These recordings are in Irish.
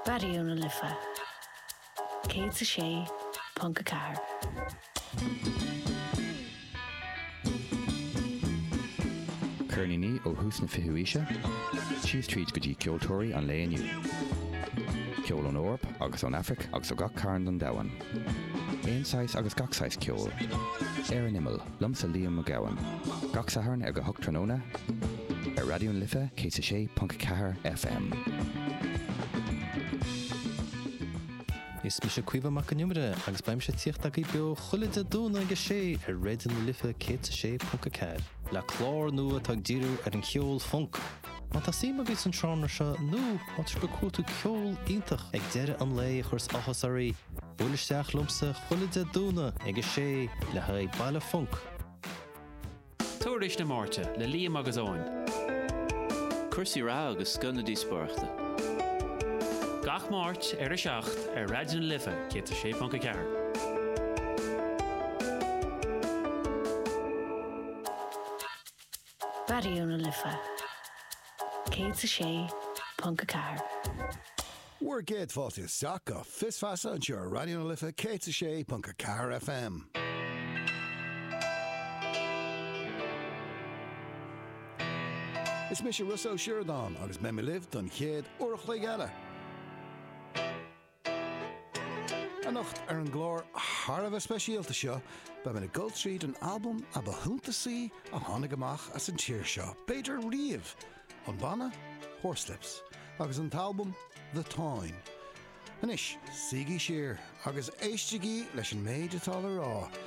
Raidió na Life 106.4. Ceirníní ó thús na fichiú aoise síos tríd go dtí ceoltóirí an lae inniu. Ceol ón Eoraip agus ón Aifric agus ó gach cearn den domhan. Aon saghas agus gach saghas ceoil. Ar an imeall. Liomsa Liam Mac Gabhann. Gach Satharn ar a hocht tráthnóna ar Raidió na Life 106.4 FM. Is mise Caoimhe Mac an Iomaire agus beidh mise ag tíocht agaibh beo chuile Dé Domhnaigh ag a sé ar Raidió na Life 106.4 le clár nua atá ag díriú ar an cheol func. Má tá suim agaibh san seánra seo nó má tá sibh ag cuartú ceol iontach ag deireadh an lae a chuireas áthas oraibh, buail isteach liomsa chuile Dé Domhnaigh ag a sé le haghaidh Baile Func. Tuairisc na Máirte le Liam agus Eoin. Cúrsaí reatha agus scoth na díospóireachta. Gach Máirt ar a 7 ar Raidió na Life 106.4. Raidió na Life 106.4. Bhur gcéad fáilte isteach go Fios Feasa anseo ar Raidió na Life 106.4 FM. Is mise Rossa Ó Sioradáin agus beidh mé libh don chéad uair a chloig eile. Anocht ar an gclár thar a bheith speisialta seo beidh muid ag dul tríd an albam a ba shuntasaí a tháinig amach as an tír seo, b'fhéidir riamh, an banna Horslips agus an t-albam The Táin. Anois suígí siar agus éistigí leis an méid atá le rá.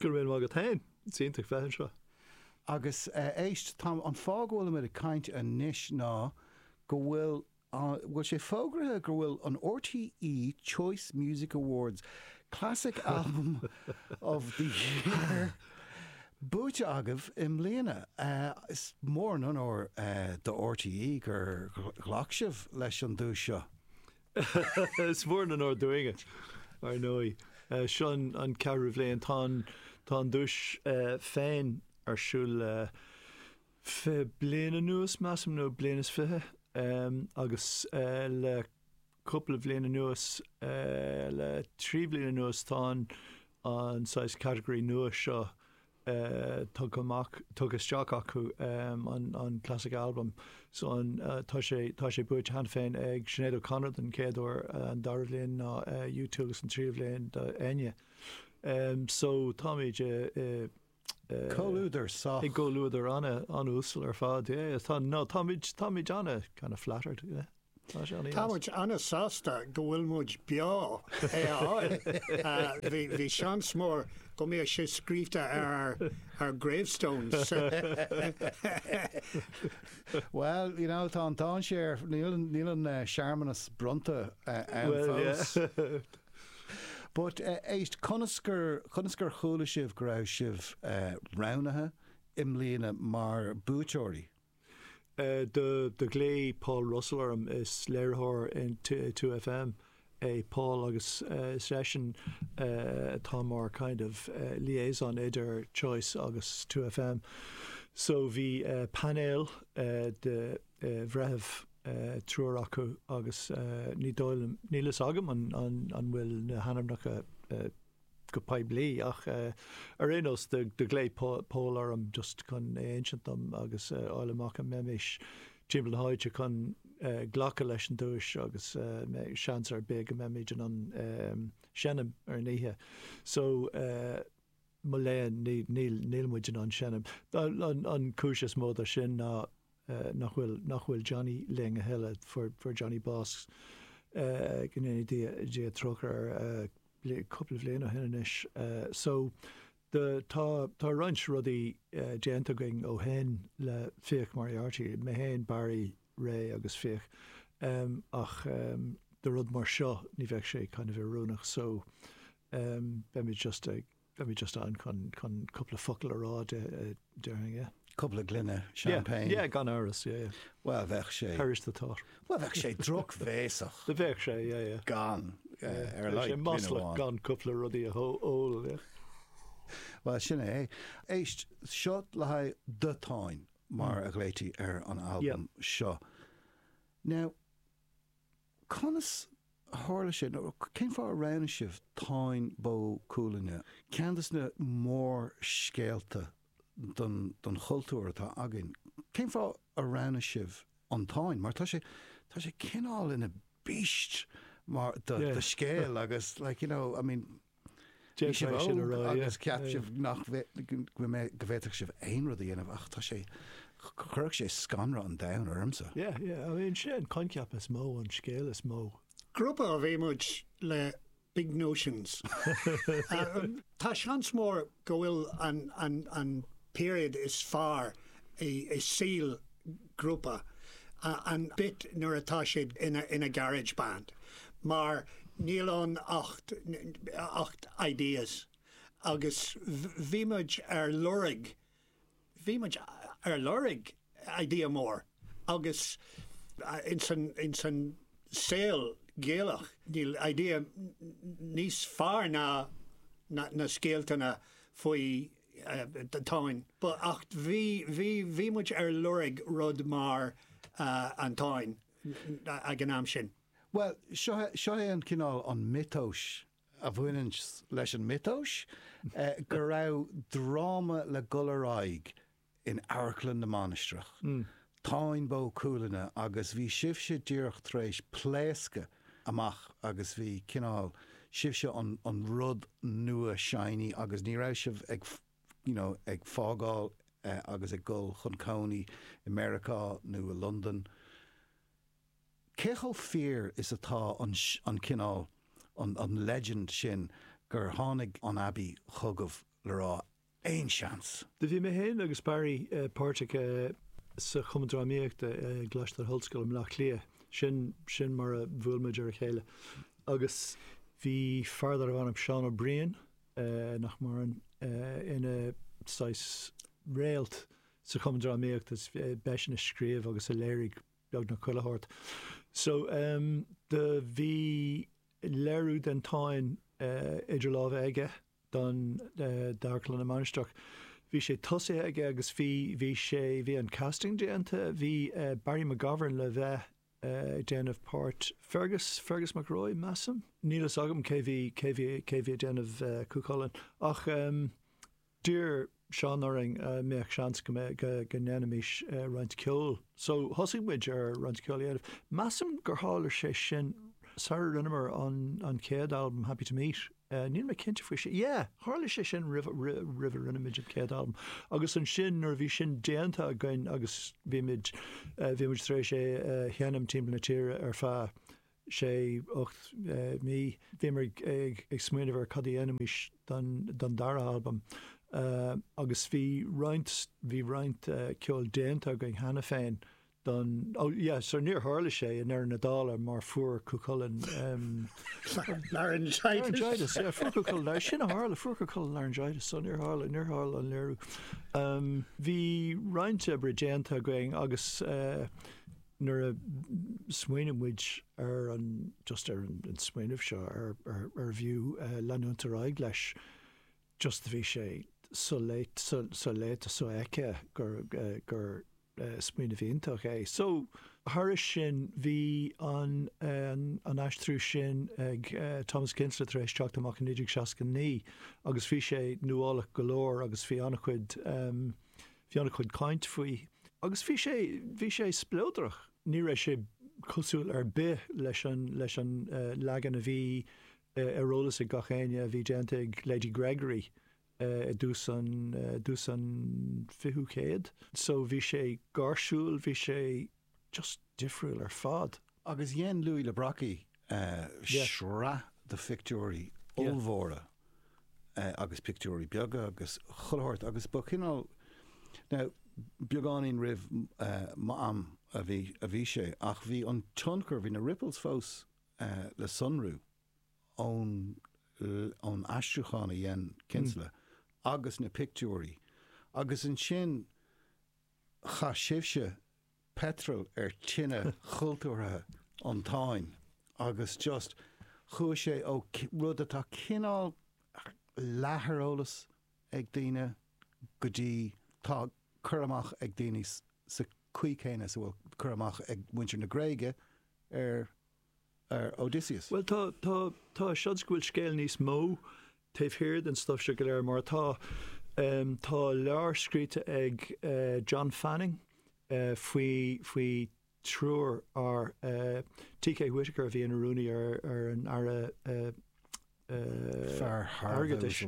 Go raibh míle maith agat féin. Is iontach bheith anseo. Agus éist, tá an fáth go bhfuil muid ag caint anois ná go bhfuil an, bhfuil sé fógraithe go bhfuil an RTÉ Choice Music Awards Classic Album of the Year buaite agaibh i mbliana. Is mór an onóir do RTÉ gur ghlac sibh leis an duais seo. Is mór an onóir dúinn é, ar ndóigh. Seo an ceathrú bhliain. Tá an duais féin ar siúl le fiche bliain anuas, measaim, nó bliain is fiche, agus le cúpla bliain anuas, le trí bhliain anuas, tá an, an saghas catagóirí nua seo tugtha amach, tugtha isteach acu an Classic Album. So an, tá sé, tá sé buaite cheana féin ag Sinéad O'Connor don chéad uair, an dara bhliain ná U2 agus an tríú bhliain do Enya. So táimid i, i, i. Comhluadar sách. I gcomhluadar ana, ana-uasal ar fad, yeah. Tá, no, táimid, táimid ana kind of flattered, yeah. Tá muid an-sásta go bhfuil muid beo chun é a fháil. Bhí seans mór go mbíodh sé scríobhta ar ár gravestones. Bhuel, you know, tá an dainséar, níl an searmanas bronnta ann fós. But éist, conas a chuala sibh go raibh sibh roghnaithe i mbliana mar buaiteoirí? Do ghlaoigh Paul Russell orm, is léiritheoir in 2FM é Paul agus is eisean atá mar kind of liaison idir Choice agus 2FM. So bhí painéal de bhreithiúna, triúr acu agus ní dóigh liom, níl fhios agam an bhfuil na hainmneacha, go poiblí ach ar aon nós do ghlaoigh Paul orm just chun é a insint dom agus a fháil amach an mbeimis timpeall na háite chun glacadh leis an duais agus seans ar bith go mbeimis in ann seinm ar an oíche so mo léan níl muid in ann seinm. An cúis is mó do sin ná eh, nach bhfuil, nach bhfuil Johnny linn a thuilleadh, fuair, fuair Johnny bás, eh, go ndéana Dia, Dia trócaire air, eh, bli, cúpla bhliain ó shin anois. Eh, so, do, tá, tá roinnt rudaí, eh, déanta againn ó shin le Fiach Moriarty, mé féin, Barry, Ray agus Fiach, em, ach, em, do rud mar seo, ní bheadh sé kind of oiriúnach so, em, beimid just ag, Beimid just ann chun cúpla focal a rá déarfainn é. Cúpla gloine champagne. Yeah, yeah, gan amhras, yeah, yeah. Bhuel, bheadh sé. Perish the thought. Bhuel, bheadh sé drochbhéasach. Bheadh sé, yeah, yeah. Gan, ar a laghad, gloine amháin. Bheadh sé maslach gan cúpla rudaí a ól, yeah. Bhuel, sin é. Éist, seo le haghaidh do Táin, mar a ghlaoití ar an albam seo. Now, Conas a tharla sé, nó cén fáth a roghnaigh sibh Táin Bó Cuailgne? Ceann des na mórscéalta don chultúr atá againn. Cén fáth a roghnaigh sibh an Táin? Mar tá sé, tá sé cineál ina beast mar, do scéal, agus like, you know, I mean, Bhí sibh óg agus cheap sibh go bhféadfadh sibh aon rud a dhéanamh ach tá sé, chuirfeadh sé scanradh an domhain ormsa. Yeah, yeah, I mean, sé an coincheap is mó, an scéal is mó. Grúpa a bhí muid le, big notions. Tá seans mór go bhfuil an períod is fearr i saol grúpa an bit nuair atá siad ina garage band mar níl ann ach ideas agus bhí muid ar lorg Bhí muid ar lorg idea mór agus ins an saol Gaelach níl idea níos fearr ná na scéaltanna faoin Táin. Ach bhí muid ar lorg rud mar an Táin ag an am sin. Bhuel, seo é an cineál an miotais a bhaineann leis an miotas, go raibh dráma le dhul ar aghaidh in Amharclann na Mainistreach, Táin Bó Cuailgne agus bhí sibhse díreach tar éis pléascadh amach agus bhí cineál, sibhse an rud nua shiny agus ní raibh sibh ag you know ag fágáil agus ag dhul chun cónaí i Meiriceá nó i Londain. Cé chomh fíor is atá an an cineál, an an legend sin gur tháinig an Abbey chugaibh le rá aon seans? Do bhí mé féin agus Barry páirteach sa Chumann Drámaíochta i gColáiste na hOllscoile i mBleá Cliath, sin sin mar a bhuail muid ar a chéile agus bhí fear darbh ainm Seán Ó Briain, nach maireann, ina saghas réalt sa Chumann Drámaíochta is b'eisean a scríobh agus a léirigh beagnach chuile rud. So, em, do bhí léiriú den Táin, eh, idir lámha aige don, eh, d'Amharclann na Mainistreach. Bhí sé tosaithe aige agus bhí, bhí sé, bhí an casting déanta, bhí, eh, Barry McGovern le bheith, eh, ag déanamh páirt Fergus, Fergus Mac Róich, measaim? Níl fhios agam cé bhí, cé bhí, cé bhí ag déanamh, eh, Cú Chulainn ach, em, D'iarr Seán orainn an mbeadh seans go mbeidh, go ndéanfaimís roinnt ceoil. So, thosaigh muid ar roinnt ceoil a dhéanamh. Measaim gur tharla sé sin sara rinneamar an an chéad albam Happy To Meet. Níl mé cinnte faoi sin. Yeah! Tharla sé sin roimh roimh a rinne muid an chéad albam. Agus ansin nuair a bhí sin déanta againn agus bhí muid bhí muid tar éis é a sheinm timpeall na tíre ar feadh sé, ocht mí. Bhíomar ag smaoineamh ar cad a dhéanfaimis don dara albam agus bhí roinnt, bhí roinnt ceoil déanta againn cheana féin don, ó yeah, so níor tharla sé i ndeireadh na dála mar fuair Cú Chulainn laryngitis, yeah, fuair Cú Chulainn, sin a tharla, fuair Cú Chulainn laryngitis so níor tharla, níor tharla an léiriú. Bhí roinnt oibre déanta againn agus eh, Nuair a smaoinigh muid ar an, just ar an smaoineamh seo, ar, ar, arbh fhiú leanúint ar aghaidh leis, just bhí sé soléite, so, soléite, sofheicthe gur, gur smaoineamh iontach é. So, thairis sin, bhí an, an aistriú sin ag Thomas Kinsella tar éis teacht amach i 1969 agus bhí sé nuálach go leor agus bhí an-chuid, Bhí ana chuid caint faoi agus bhí sé, bhí sé spleodrach. Ní raibh sé cosúil ar bith leis an, leis an leagan a bhí ar eolas ag gach éinne a bhí déanta ag Lady Gregory i dtús an, dtús an fichiú céad. So bhí sé gáirsiúil, bhí sé. just difriúil ar fad. Agus dhein Louis le Brocquy sraith de phictiúirí ollmhóra agus pictiúirí beaga agus chuile shórt agus ba chineál, now beagáinín roimh m'am a bhí a bhí sé ach bhí an tionchar, bhí na ripples fós le sonrú ón ón aistriúchán a dhein Kinsella agus na pictiúirí agus ansin, Chaith sibhse peitreal ar tine chultúrtha an Táin agus just chuaigh sé ó rud atá cineál leath ar eolas ag daoine go dtí tá cur amach ag daoine sa chaoi chéanna is a bhfuil cur amach ag muintir na Gréige ar ar Odysseus. Bhuel, tá, tá, tá seans go bhfuil scéal níos mó taobh thiar den stuif seo go léir, mar tá, em, tá leabhar scríte ag, eh, John Fanning, eh, faoi, faoi triúr fhear, eh, T. K. Whitaker a bhí ina rúnaí ar, ar an Aire, eh, eh, Airgeadais,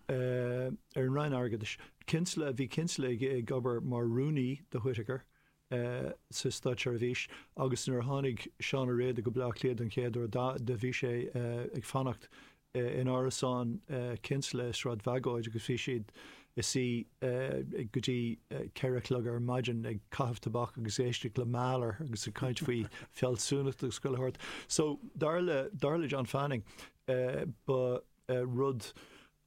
eh, ar an Roinn Airgeadais, Kinsella, bhí Kinsella ag, ag obair mar rúnaí do Whitaker, sa státseirbhís agus nuair a tháinig Seán Ó Riada go Bleá Cliath don chéad uair do bhí sé ag fanacht in árasán Kinsella i Sráid Bhagóid agus bhí siad ag suí go dtí ceithre a chlog ar maidin ag caitheamh tobac agus ag éisteacht le Mahler agus ag caint faoi fealsúnacht agus chuile shórt. So dar le John Fanning ba rud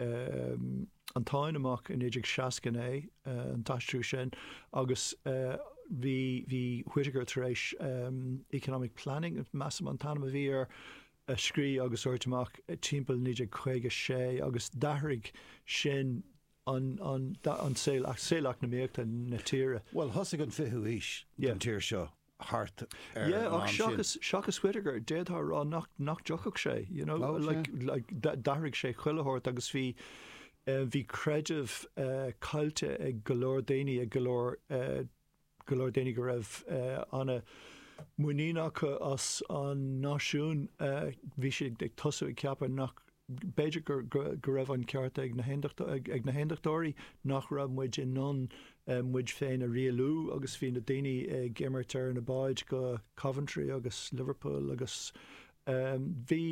um an Táin amach i 1969, um an t-aistriú sin, agus um bhí bhí Whitaker tar éis um Economic Planning, measaim an t-ainm a bhí air, a scrí agus a thabhairt amach timpeall 1956 agus d'athraigh sin an an an saol saol eacnamaíochta na tíre. Bhuel, thosaigh an fichiú haois don tír seo. thart ar an am sin. Yeah, ach seachas Whitaker, d'fhéadfá a rá nach dtiocfadh sé, you know, d'athraigh sé chuile shórt agus bhí bhí creideamh caillte ag go leor daoine ag go leor go leor daoine go raibh ana muinín acu as an náisiún bhí siad ag tosú ag ceapadh nach B'fhéidir go raibh an ceart ag na hAondachtóirí nach raibh muid in ann muid féin a rialú agus bhí na daoine ag imeacht ar na báid go Coventry agus Liverpool agus bhí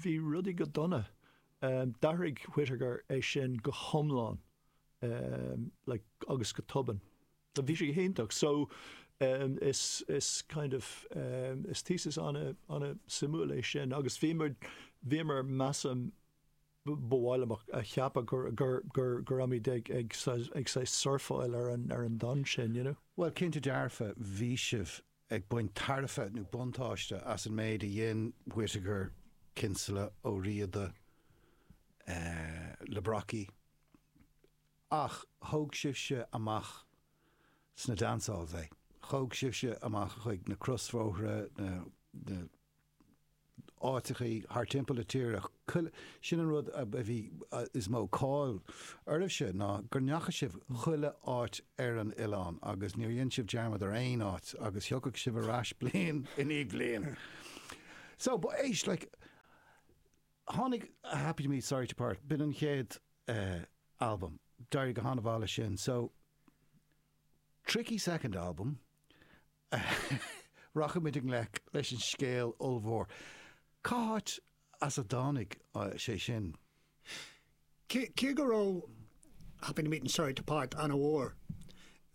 bhí rudaí go dona. D'athraigh Whitaker é sin go hiomlán agus go tobann. Tá bhí sé go hiontach. So is is kind of is thesis ana ana suimiúil é sin agus bhíomar bhíomar measaim ba mhaith liom a cheapadh gur gur gur go raibh muid ag ag ag saghas surfáil ar an ar an dtonn sin, you know? Bhuel, cinnte dearfa bhí sibh ag baint tairbhe nó buntáiste as an méid a dhein Whitaker, Kinsella, Ó Riada, eh le Brocquy, Ach thóg sibhse amach sna dancehalls é. Thóg sibhse amach chuig na crosbhóithre, na, na, áiteachaí thart timpeall na tíre, chuile, sin an rud a bhí is mó cáil oraibhse ná go ndeacha sibh chuile áit ar an oileán agus níor dhein sibh dearmad ar aon áit agus thiocfadh sibh ar ais bliain i ndiaidh bliain. So, ba é, like, Tháinig Happy To Meet Sorry To Part, b'in an chéad albam, d'éirigh go han-mhaith leis sin, so tricky second album, rachaimid i ngleic leis an scéal ollmhór, cá háit as a dtáinig sé sin? Cé go raibh Happy To Meet and Sorry To Part ana mhór,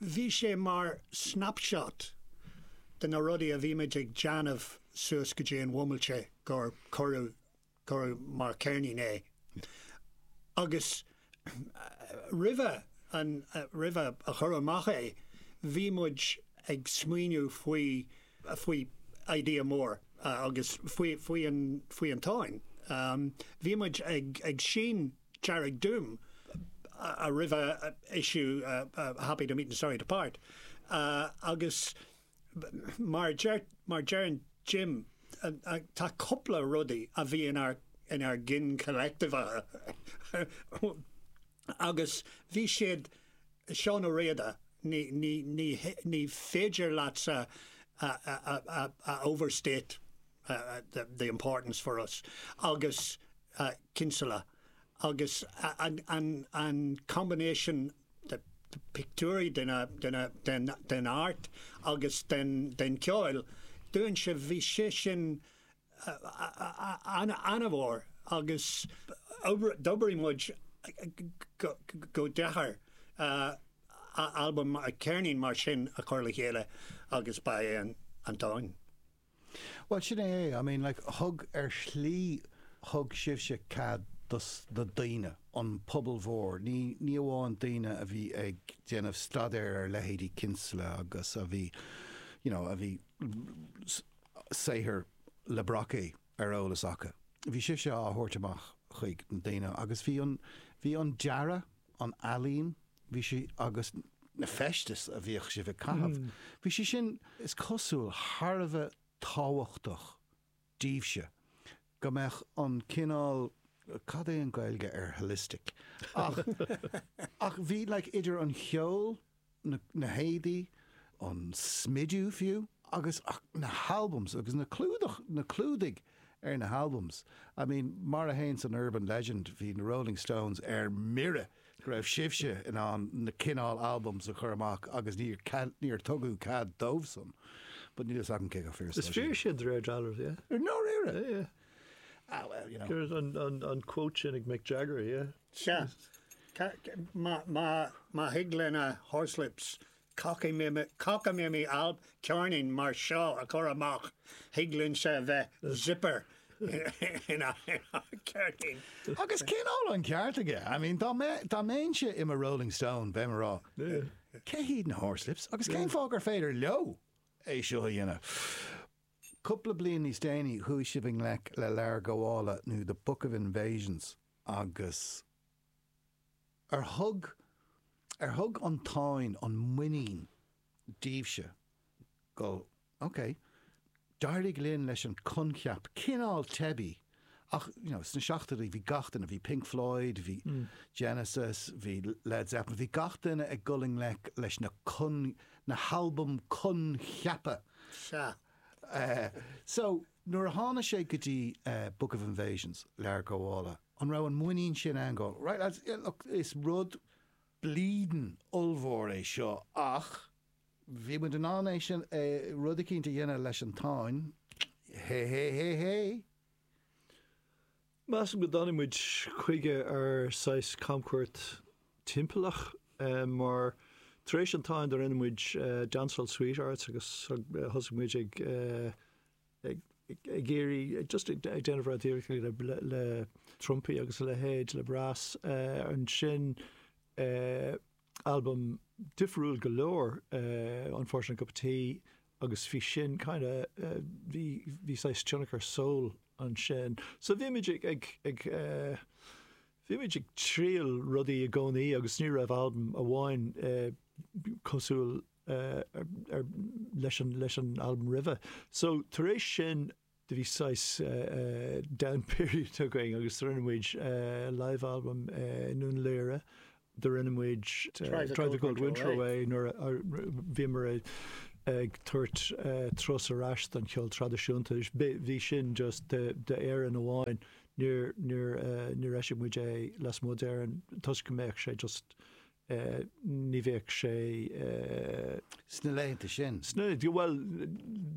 bhí sé mar snapshot de na rudaí a bhí muid ag déanamh suas go dtí an bhomaite gur cuireadh cuireadh mar ceirnín é. Agus roimhe an roimhe a chur amach é, bhí muid ag smaoineamh faoi faoi idea mór agus faoi an Táin. Bhí muid ag seinm Dearg Doom a roimhe issue Happy To Meet and Sorry To Part agus mar a deireann Jim tá cúpla rudaí a bhí inár gcinn collective. Agus bhí siad, Seán Ó Riada, ní, ní, ní, ní féidir leatsa a, a, a, a, a overstate the, the importance for us, agus Kinsella agus an, an, an combination de, de pictiúirí, de na, de na, den, den art agus den, den cheoil dúinne, bhí sé sin, an-mhór agus d'oibrigh muid go deacair albam, ceirnín mar sin a chur le chéile agus ba é an Táin. Bhuel, sin é é. I mean like, thug, ar shlí thug sibhse cead do na daoine, an pobal mhór, ní amháin daoine a bhí ag déanamh staidéir ar leithéidí Kinsella agus a bhí, you know, a bhí, saothair Le Brocquy ar eolas acu. Bhí sé seo á tabhairt amach chuig na daoine agus bhí an, bhí an dearadh, an ealaín, bhí sé, agus na feistis a bhíodh sibh ag caitheamh, bhí sé sin, is cosúil, thar a bheith tábhachtach daoibhse, go mbeadh an cineál, cad é an Gaeilge ar holistic? ach, ach bhí, like, idir an cheol, na héadaí, an smidiú fiú, agus na halbums, agus na clúdach, na clúdaigh ar na halbums. I mean, mar a théann san urban legend, bhí na Rolling Stones ar mire go raibh sibhse in ann na cineál albums a chur amach agus níor, níor tugadh cead dóibhsan. But níl fhios agam cé chomh fíor is atá sin. Is fíor sin de réir dealraimh, yeah. Ar ndóigh, yeah. Ah well, you know. An quote sin ag Mick Jagger, yeah. Sea. Má thig le na Horslips cockaimimí alp ceirnín mar seo a chur amach, thig linne zipper in ár gceirnín. Agus nach bhfuil an ceart aige? I mean, dá mbeinnse i mo Rolling Stone, bheinn ag rá, cé hiad na Horslips agus cén fáth gur féidir leo é seo a dhéanamh? Cúpla bliain níos déanaí, chuaigh sibh i ngleic le Leabhar Gabhála nó the Book of Invasions. Agus ar thug, ar thug an Táin, an muinín daoibhse go, ok, d'éirigh linn leis an coincheap cineál teibí ach, you know, sna seachtóidí bhí gach duine, bhí Pink Floyd, bhí Genesis, bhí Led Zeppelin, bhí gach duine ag dul i ngleic leis na con, na halbaim coincheapa. Sea. So. Nuair a tháinig sé go dtí Book of Invasions, Leabhar Gabhála, an raibh an muinín sin ann go, right lads, yeah look, is rud bleedin' ollmhór é seo ach bhí muid in ann é sin, é, rud eicínt a dhéanamh leis an Táin, hé hé hé hé? Measaim go dtáinig muid chuige ar saghas camchuairt timpeallach, mar tar éis an Táin do rinne muid Dancehall Sweethearts agus thosaigh muid ag ag iarraidh just ag déanamh rudaí ríocht le trumpaí agus a leithéid le brass. Ansin Albam difriúil go leor é The Unfortunate Cup of Tea agus bhí sin kind of, bhí, bhí saghas tionchar soul ansin. So bhímid ag, ag, ag eh, bhímid ag triail rudaí i gcónaí agus ní raibh albam amháin cosúil eh, ar, ar, leis an, leis an albam roimhe. So tar éis sin, do bhí saghas down period againn agus do rinne muid live album i nDún Laoghaire, do rinne muid Drive the Cold Winter Away nuair a bhíomar ag tabhairt turas ar ais don cheol traidisiúnta, bhí sin just d'Éirinn amháin, níor eisigh muid é lasmuigh d'Éirinn toisc go mbeadh sé just. ní bheadh sé. Sna laethanta sin. Sna, bhuel,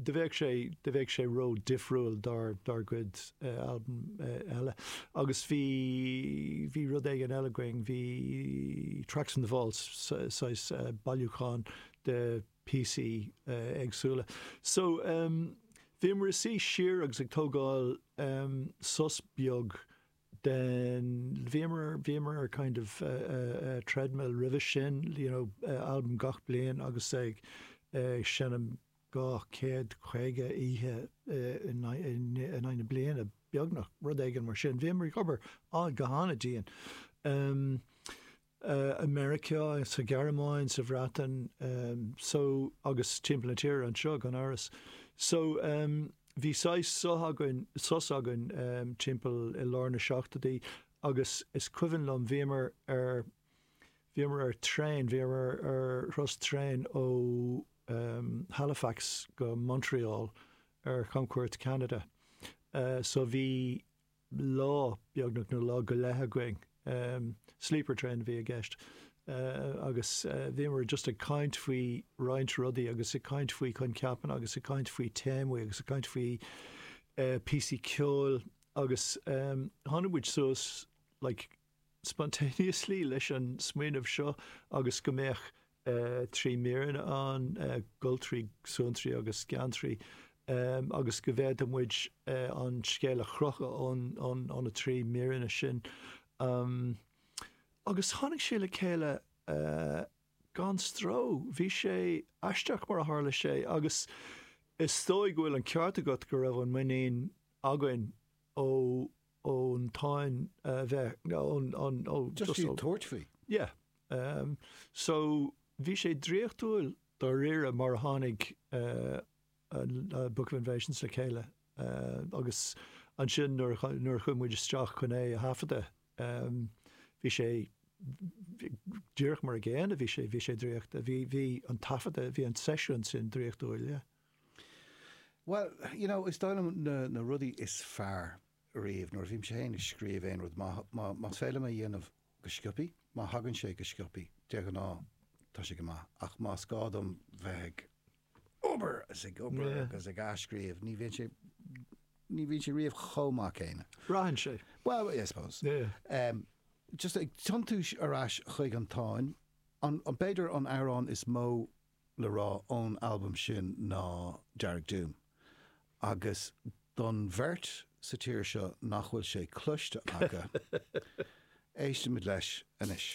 do bheadh sé, do bheadh sé ró difriúil dár, dár gcuid albam eile. Agus bhí, bhí rud éigin eile againn, bhí Tracks from the Vaults, saghas bailiúchán de píosaí éagsúla. So, bhíomar ag suí siar agus ag tógáil sos beag den bhíomar, bhíomar ar kind of treadmill roimhe sin, you know albam gach bliain agus ag seinm dhá chéad caoga oíche in aghaidh na bliana beagnach, rud éigin mar sin. Bhíomar ag obair go han-dian. i Meiriceá, sa Ghearmáin, sa Bhreatain, so, agus timpeall na tíre anseo, gan amhras. So, bhí saghas suth againn, sos againn, timpeall i lár na seachtóidí agus is cuimhin liom, bhíomar ar, bhíomar ar traein, bhíomar ar thuras traein ó Halifax go Montreal ar chamchuairt Cheanada. So bhí. lá, beagnach, nó lá go leith againn. Sleeper train a bhí i gceist. Agus bhíomar just ag caint faoi roinnt rudaí agus ag caint faoi choincheapanna agus ag caint faoi téamaí agus ag caint faoi píosaí ceoil agus tháinig muid suas like, spontaneously leis an smaoineamh seo agus go mbeadh trí míreanna ann, Goltraí, Suantraí agus Geantraí, agus go bhféadfadh muid an scéal a chrochadh ó na trí míreanna sin. Agus tháinig sé le chéile gan stró. Bhí sé aisteach mar a tharla sé agus is dóigh go bhfuil an ceart agat go raibh an muinín againn ó. ón táin a bheith, nó just iad tabhairt faoi. Yeah. So bhí sé draíochtúil dáiríre mar a tháinig Book of Invasions le chéile agus ansin nuair a chuaigh muid isteach chun é a thaifeadadh bhí sé díreach mar a gcéanna, bhí sé draíochtúil. Bhí an taifeadadh, bhí an seisiún sin draíochtúil, yeah. Bhuel, you know, is dóigh liom na rudaí is fearr riamh nuair a bhímse féin ag scríobh aon rud, más féidir liom é a dhéanamh go sciopaí, má thagann sé go sciopaí, de ghnáth, tá sé go maith, ach más gá dom bheith ag obair is ag obair agus ag athscríobh, ní bhíonn sé, ní bhíonn sé riamh chomh maith céanna. Braitheann sé. Bhuel, I suppose ag tiontú ar ais chuig an Táin, b'fhéidir an amhrán is mó le rá ón albam sin ná Dearg Doom agus don bheirt sa tír seo nach bhfuil sé cloiste acu, éistfimid leis anois.